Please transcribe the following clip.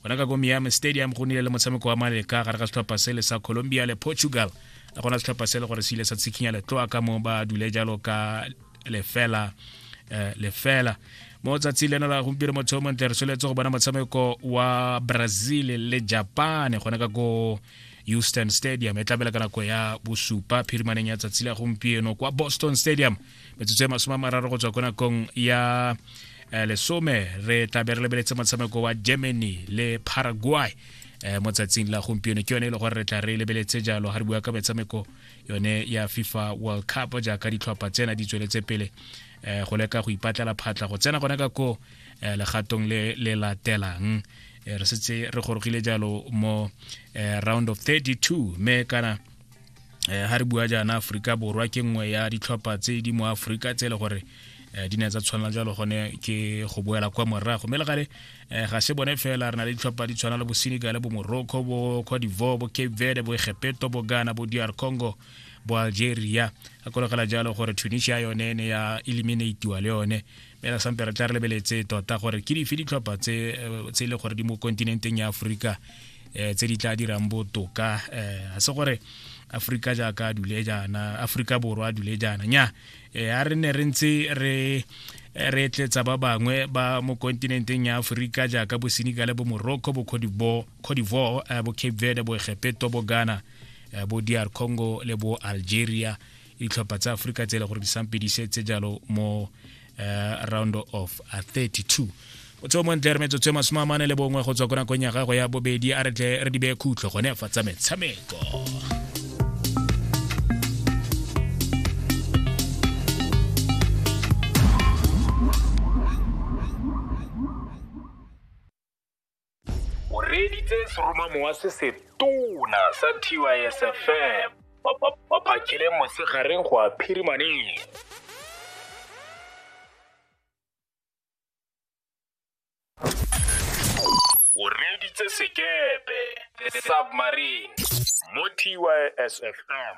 gona ka ko miami stadium go nile le motshameko wa maleka gare ga setlhopha sele sa colombia le portugal le gona setlhopha sele gore se ile sa tshikinya letloa ka mo ba dule jalo ka lefela eh, lefela mo tsatsi leno la gompieno motho o montle re soletse go bona motshameko wa brazil le japan gone ka ko houston stadium e tlabela ka nako ya bosupa phirimaneng ya tsatsi la gompieno kwa boston stadium metsotso ya masome a mararo go tswa ko nakong ya eh, lesome re tlabe re lebeletse motshameko wa germany le paraguay eh, mo tsatsing la gompieno ke yone e le gore re tla re lebeletse jalo ga re bua ka metshameko yone ya fifa world cup jaaka ditlhopha tsena di tsweletse pele eh, go leka go ipatlela phatla go tsena gone ka ko eh, legatong le le latelang eh, re setse re gorogile jalo mo eh, round of 32 me kana eh, ha re bua jaana aforika borwa ke nngwe ya ditlhopha tse di mo aforika tse e le gore eh, di ne tsa tshwanela jalo gone ke go boela kwa morago mme le gale eh, ga se bone fela re na le ditlhopha di tshwana le bo senegal bo morocco bo cote divoire bo cape verde bo egepeto bo ghana bo dr congo bo algeria a kologela jalo gore tunisia yone ne ya eliminatiwa le yone mme ra sampe re tla re lebeletse tota gore ke dife ditlhopha tse e le gore di mo kontinenteng ya aforika um tse di tla dirang botoka um ga se gore aforika jaaka a dule jaana aforika borwa a dule jaana nya um a re ne re ntse re re tletsa ba bangwe ba mo kontinenteng ya aforika jaaka bosenegal bo morocco bo codivore eh, bo cape verde bo egepeto bo ghana eh, bo dr congo le bo algeria ditlhopha tsa aforika tse e le gore di sampe di setse jalo mo eh, round of 32 o tseo mo ntle re metsotso e masome a mane le bongwe go tswa ko nakong ya gago ya bobedi a re tle re di beye khutlo gone fa tsa metshameko o reeditse seroma mowa se se tona sa tysfm ba phakile mosegareng go a phirimaneng o reeditse sekepe the submarine mo tysfm